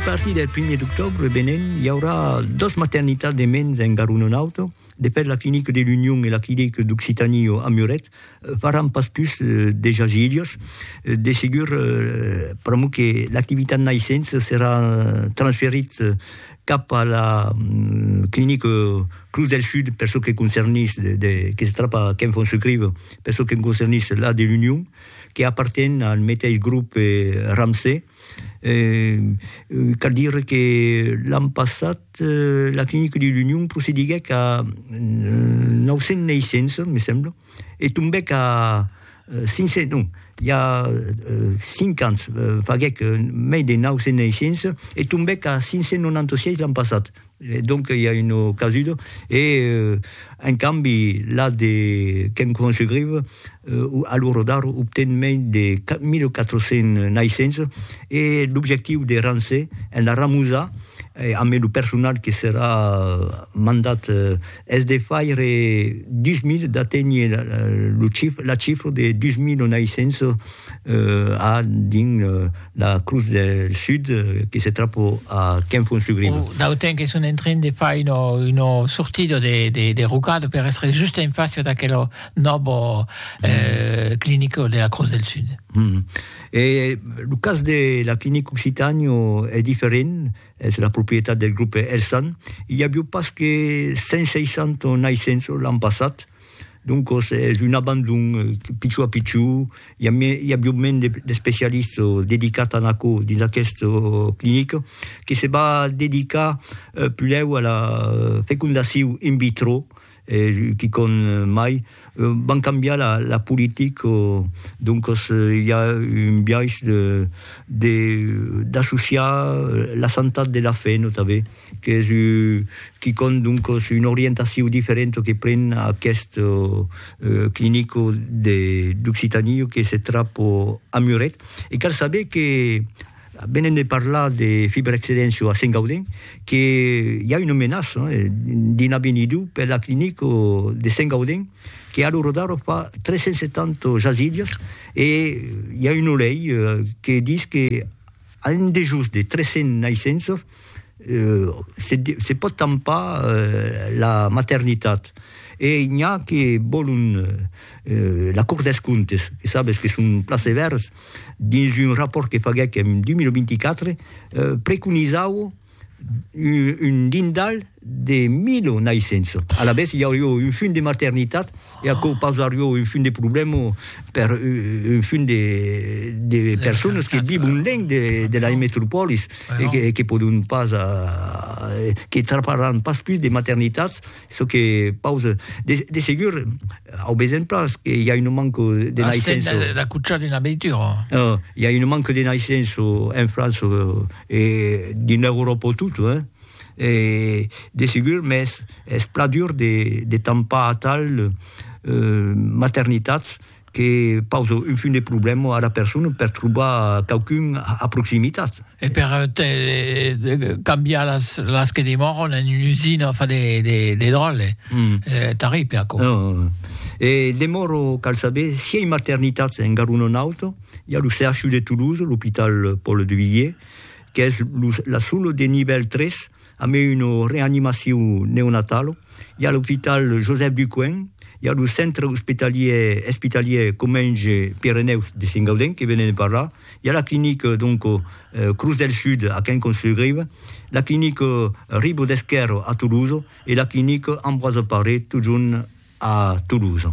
A partir del primièr d'octòbre venent, i aurà dos maternitats de mens en gar un o n'autre. De fèt, la clinica de l'Union e la clinica d'Occitanie a Muret faràn pas pus de jasilhos. De segur, pr'amor que l'activitat naissença serà transferits cap a la clinica Cruz del Sud per çò que concernís de, que se trapa a Ken von Sucrive, per çò que concernís la de l'Union, que aparten al meteis grope Ramsay. Cal dire que l'an passat la clinica de l'Union procediguèc a 900 naissenças, me sembla, e tombèc a 500, non, i a 5 ans faguèc mei de 900 naissenças e tombèc a 596 l'an passat. E donc i a una casuda. E en cambi la de Ken Kwan-Sugriev a lo radar obten mei de 1400 naissença e l'objectiu de Ramsay en la ramosar, ambe lo personal que serà mandat es de faire 2000, d'aténher la chifra de 2900 a dins la Crus del Sud que se trapa a Quinfon-sur-Grive. D'autant que son en train de far una sortida de rocada per èstre just en fàcia d'aquela nòva clinica de la Crus del Sud. E lo cas de la clinica Occitània es diferent? Es la proprietat del grupe Elsan. I avió pas que 160 naissents l'an passat, doncos es un abandon pichó a pichó, i avió mens d'especialistes dedicats a aquò dins aquesta clinica, que se va dedicar pulèu a la fecundacion in vitro, e quicòm mai van cambiar la la politic o doncas i a un biais de de d'associar la santat de la fe notave qu'es u quicòm doncas una orientacion diferenta que pren aqueste clinico de d'Occitanie que se trap a Muret e cal saber que Venent de parlar de Fibre Excellencio a Saint-Gaudens, que i a una menaça d'in avenidur per la clinic de Saint-Gaudens, que ara rodaro fa 370 jasilhas, e i a una lei que dis que a un dejós de 300 naissenças se pòt tampar la maternitat. E n'i a que vòlon la Cort des Comptes, que sabes que son plan sevèrs, dins un rapòrt que faguèc en 2024, preconizau un lindal de 1.000 naissençs. Alavetz, i aurió un funt de maternitat e aquò pausarió un funt de problèma per un funt de personas que vivon lenc de las metropòlis e que pòdon pas, que traparàn pas pus de maternitats. çò que pausa de de segur au besen pas que i a un manco de naissenço Asten d'acuchar d'una veitura oh, i a un manco de naissenço en França e dins l'Euròpa tota hein e de segur mès es plat dur de de tampar atal euh maternitats que pausa un fum de problèma ara persona per trobar quauqu'un a proximitat. E per cambiar las que demòran en una usina fa de dròlle, tarripe aquò. E demòro cal saber si ei maternitats en Garona Nauta, i a lo CHU de Toulouse, l'Hopital Paul Duvivier, qu'es la sola de nivèl 3 A mai una reanimacion neonatala, i a l'opital Josèphe Ducoing, i a lo centre ospitalier espitalier Comenge Pirenèus de Sengaudèn que venèm de parlar, i a la clinica donc Cruz del Sud a Quincamps-sur-Grive, la clinica Ribo d'Esquèrro a Tolosa e la clinica Ambroise Paré totjorn a Tolosa.